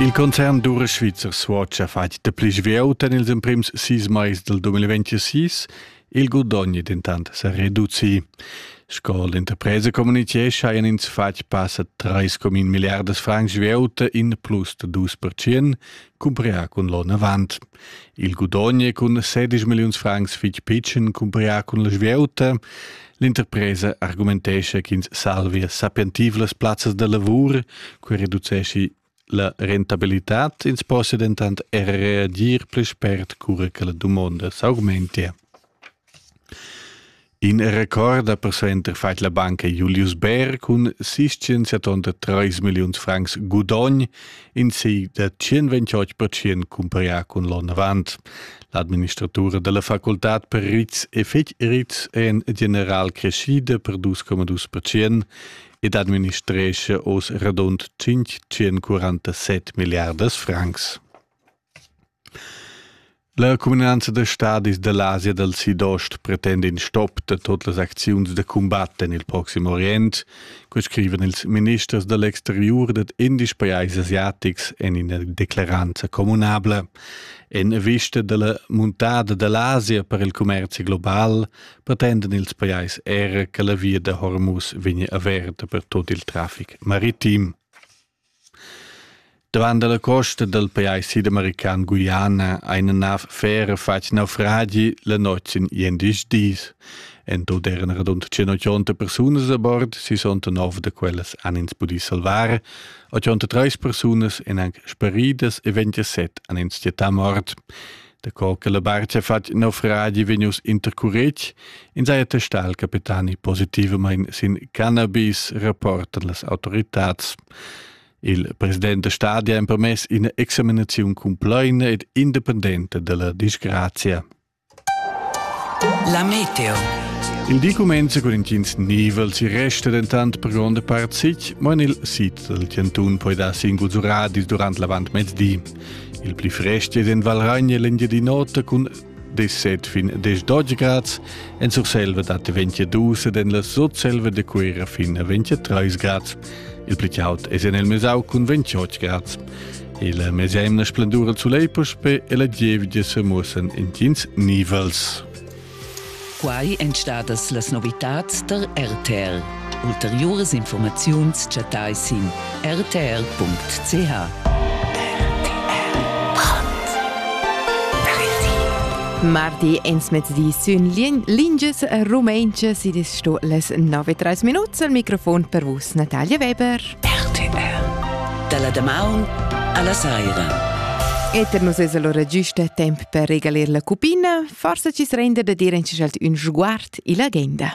Il concern d'ura svizzer Swatch ha fatg dapli svelt en ils emprims sis mais del 2026. Il gudogn dentant sa reduci. Sco l'interpresa communitgescha hajan ins fatg passa 3,1 milliardas francs svelt in plus da 2%, cumprià cun l'on avant. Il gudogn cun 16 milliuns francs fitg pitschen cumprià cun la svieuta. L'interpresa argumentescha ch'ins salvia sapientivlas plazzas da lavur, quei reducesci la rentabilitad, ins possa dentant er reagir pli spert cura che la dumonda s'augmentia. In recorda per center fat la banca Julius Bär cun sis tonta treis milliuns francs gudogn in sei da 128% cumparià cun l'onn avant. L'administratura della facultad per rizs e fetg rizs è en general crescida per 2,2% ed administresce oz radund 547 milliardas francs. La cuminanza da stadis da l'Asia dal Sidost pretenda in stop da tot las acziuns da cumbat en il Proxim Orient, co scrivan ils ministers da l'exteriur dad indies pajais asiatics en ina declaranza communabla. En vista da la muntada da l'Asia per il commerzi global pretendan ils pajais era che la via da Hormuz vegnia averta per tot il traffic maritim. Dovant la costa dal pajais sidamerican Guiana ha ina nav fera fatg naufragi la notg in endisch dis. En tut eran radund 180 persunas a bord, sisonta nov da quellas han ins pudì salvar. 83 persunas èn anc speridas e 27 han ins chattà mort. Daco che la barcha fatg nov radio vegnius intercuretg, ins ha attestà al capitani positivamain sin cannabis, rapportan las autoritads. Il president da stadi ha empermess ina examinaziun cumplaina ed independenta della disgrazia. La meteo. Il di comincia con intgins nivel, si resta dentant per gronda part sic, ma en il sit del Tiantun poi dar singuls radis durant l'avant mezdi. Il pli frest ed en Valragna l'Engiadin'Ota cun deset fin des 12 grads, en Surselva dat 22 ed en la Sutselva de Cuera fin a 23 grads. Il pli caud es en el Mesau cun 28 grads. Il mesemna splendura zu Leipusch pe e la gievidia se muossen in tins nivels. Quai èn stadas las novitads tar RTL. Ulteriuras informaziuns chattai sin rtr.ch. Mardi ensmezdi sün lingias rumentschas id es sto les 9 3 minuts al microfon per vus Natalia Weber. RTL Da la damaun alla saira. E per nus es allora giusta temp per regalir la cupina Forsa chi's renda da dir in ün sguard illa genda.